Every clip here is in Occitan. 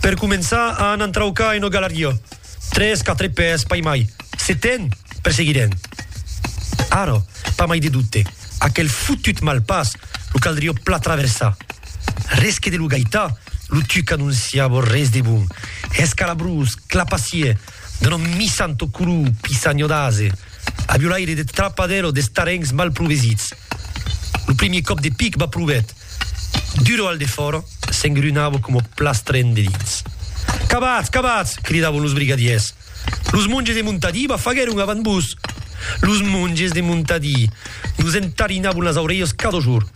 Per començar a an entraucar en Ogalarió, tres, quatre pès, pas mai. Se ten, perseguirem. Ara, pas mai de dubte, aquel fotut malpàs lo caldrió pla traversar. Res que de lo gaitar, lo tuc anonciava res de bon, escalabrós, clapassier, d'un òme missant tot color, pissanho d'ase, aviolaire de trapadero d'estarencs mal provesits. Lo primier còp de pic va provèt. Duro al defòra, s'engrunava coma plastrèn de dins. Cabatz! Cabatz! cridavan los brigadièrs. Los monges de Montadí va faguèron avant vos! Los monges de Montadí! Nos entarinavan las aurelhas cada jorn.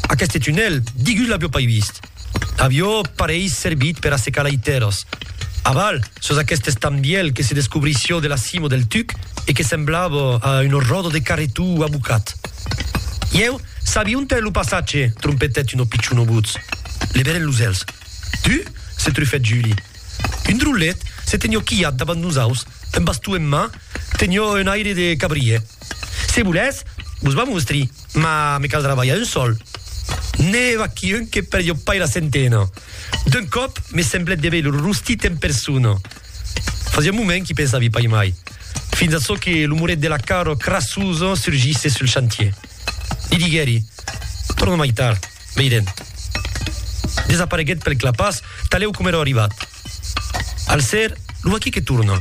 Aqueste tunèl, digui-us l'avió pas vist. Avió pareis servit per assecar lai tèrras. Aval, sus aqueste estambièl que se descobrissió de la cima del tuc e que semblava a una ròda de carretó abocat. Ieu, Sabi ont è lo passatge? trompetèt un opicion obutz. Leverèt los èlhs. Tu? se trufèt Juli. Un drollet se tenió quilhat davant nosaus, un baston en man, tenió un aire de cabrier. Se volètz, vos va mostri, mas me caldrà balhar un sol. N'è vaquí un que perdió pas era centena. D'un còp, me semblèt de veir lo rostit en persona. Fasiá un moment qu'i pensavi pas mai, fins a çò que lo muret de la Caro crassosa surgisse sul chantier. Li diguèri, Torna mai tard, veirem. Desapareguèt pel clapàs, talèu coma èra arribat. Al ser, lo vaquí que torna,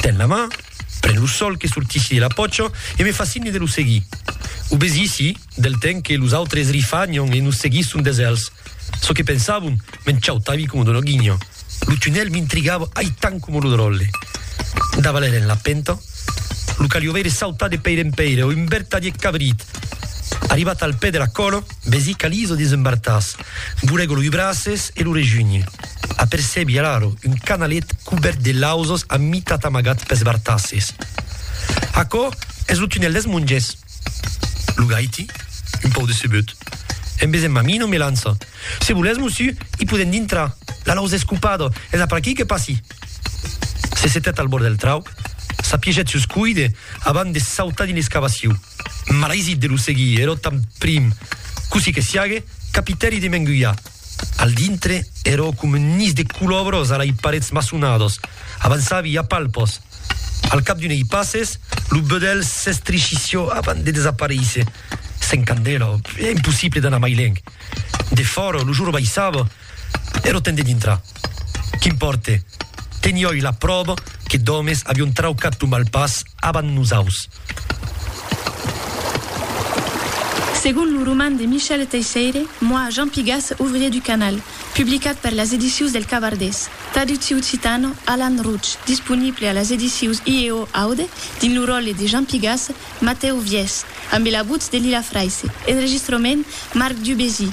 ten la man, pren lo sòl que sortissi de la pòcha e me fa signe de lo seguir. Obesissi, del temps que los autres rifagnan e nos seguisson des èlhs. Çò que pensavon, m'enchautavi coma d'una guinha. Lo tunèl m'intrigava aitant coma lo dròlle. Davaler en la penta, lo calió veire sautar de pèire en pèire un vertadier cabrit. Arribat al pè de la còla, vesi qu'Aliso desembartàs, burego loi braces e lo rejunhi. Apercebi alaro un canalet cubèrt de lausas a mitat amagat pes bartasses. Aquò es lo tunèl des monges. Lo gaiti, un pauc decebut, en vesent ma mina, me lança, Se volètz, mosiu, i podèm dintrar, la lausa es copada, es a per aquí que passi. Se setèt al bòrd del trauc, s'apiegèt sus cuide abans de sautar dins l'escavaciu. Malaisit de lo seguir, era tanprim, cossí que siague, capitèri de m'engulhar. Al dintre ero com un nis de culòbros a lei parets maçonados. Avançavi a palpos. Al cap d'unei passes, lo bedèlh s'estrichissió avant de desaparéisser. Sens candela, ò impossible d'anar mai lènh. De fòra, lo jorn baissava, ero temps de dintrar. Qu'impòrte, teniói la pròva que d'òmes avión traucat lo malpàs avant nosaus. Segon lo roman de Michel Teisseire, Moi, Jean Pigas, ouvrier du canal, publicat per las edicius del Cavardés, traducciu occitano, Alan Rouch, disponible a las edicius IEO Aude, dins lo ròtle de Jean Pigas, Matèu Viès, ambe la votz de Lila Fraisse, enregistrament, Marc Dubésy,